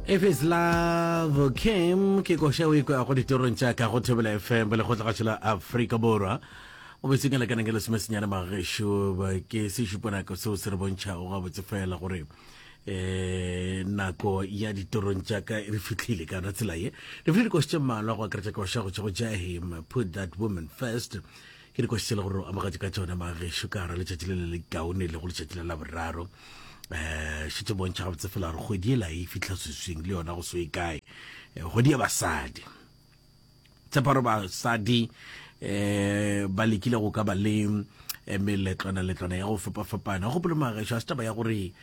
if it's love kim ke koša o ikwago ditorong tša ka go thobela fm le go tlagatšo la afrika borwa o be sengela kanang ke lesome senyane magešo ba ke sešuponako seo se re bontšhago gabotse fela gore eh nako ya ditorong tša ka re fitlhile kana tsela ye re fitlhile dikoši tše mmalwa go akaretša koša go tšwa go jahim put that woman first Ke dikotsi tse le gore o amogetše ka tšona magešo ka gara letšatši le le le kaone le go letšatši la laboraro um eh, šetse bontšha gabotse fela gore kgwedi e la e fitlha seswing le yona go so e kae eh, kgwedi ya basadi tsheparo basadi eh ba lekile go ka ba le eh, meletlwana letlwana ya go fapafapana go gopole magaešo a setaba ya gore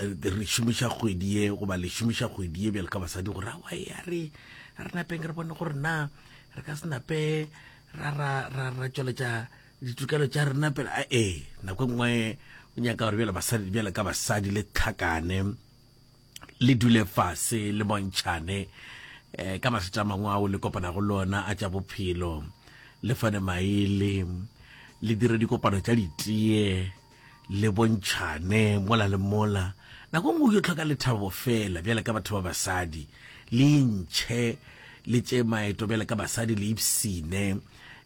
eh, re šomiša kgwedi ye goba le šomiša kgwedi ye bjale ka basadi gore awa ya re re napeng re bone gore na re ka se nape ra ra ra ra tšweletša ditokelo tša rena pele a ee nako e nngwe o nyaka gore bjale basadi bjale ka basadi le tlhakane le dule fase le bontšhane um ka mathata a mangwe ao le kopanago le ona a tša bophelo le fane maele le dire dikopano tša ditee Le bontšhane mola le mola. Nako nngwe o yo tlhoka lethabo fela bjale ka batho ba basadi. Le intšhe le tše maeto bjale ka basadi, le ipsine.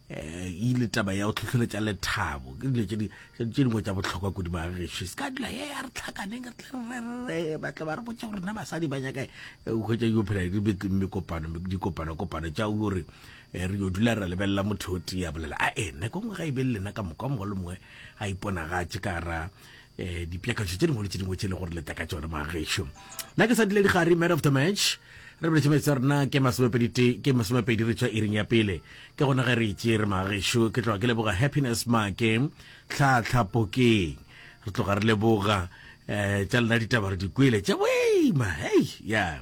E le taba ya go tlhohleletša lethabo. Ke dilo tše dingwe tša bohlokwa kudu magagešo. E se ka dula ye a re tlhakaneng re tle re rerere ba tle ba re botše gore na basadi ba nyaka eng. O hwetša yo phela di mekopano, dikopanokopano tša o yo re re yo dula re lebelela motho o tee a bolela. Ae nako nngwe ga e be le lena ka moka o mongwe le mongwe a iponagatše ka ra eh, dipjakatsho tše dingwe le tše dingwe tše le gore leta ka tsone magešo nna ke sa dile digare man of the match re boletse metse rena ke masomepedi ke masomepedi re tswa iring ya pele ke gona ge re itse re magešo ke tloga ke leboga happiness make tlhatlhapokeng re tloga re leboga um tša lena ditaba re di kwele tša boima hei ya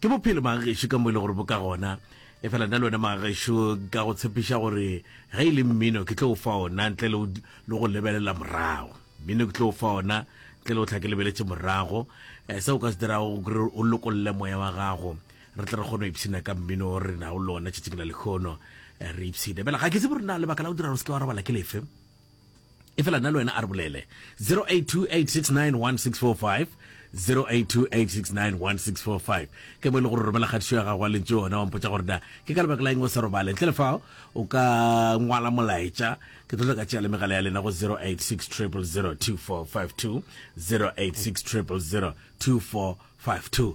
ke bophelo magešo ka mo e le gore bo ka gona Efela nna le wena magaxo ka go tshepiša gore ge e le mmino ke tlo o fa ona ntle le go lebelela morago. Mmino ke tlo o fa ona ntle le go tla ke lebeletše morago. Eh, se o ka se dirago gore o lokolle moya wa gago re tle re kgone go ipshina ka mmino o re nago le ona tšatšing la lekgono eh, re ipshine fela ga ke se bore na lebaka la go dira gore se ke wa robala ke lefe Efela nna le wena a re bolele 0828691645 ke mo e le gore romela kgatišo ya gago wa lentso yona wa mpotsa gore na ke ka lebaka la eng o sa robale ntle le fao o ka ngwala molaetša ke tlo ka tšea le megala ya lena go 0860002452 0860002452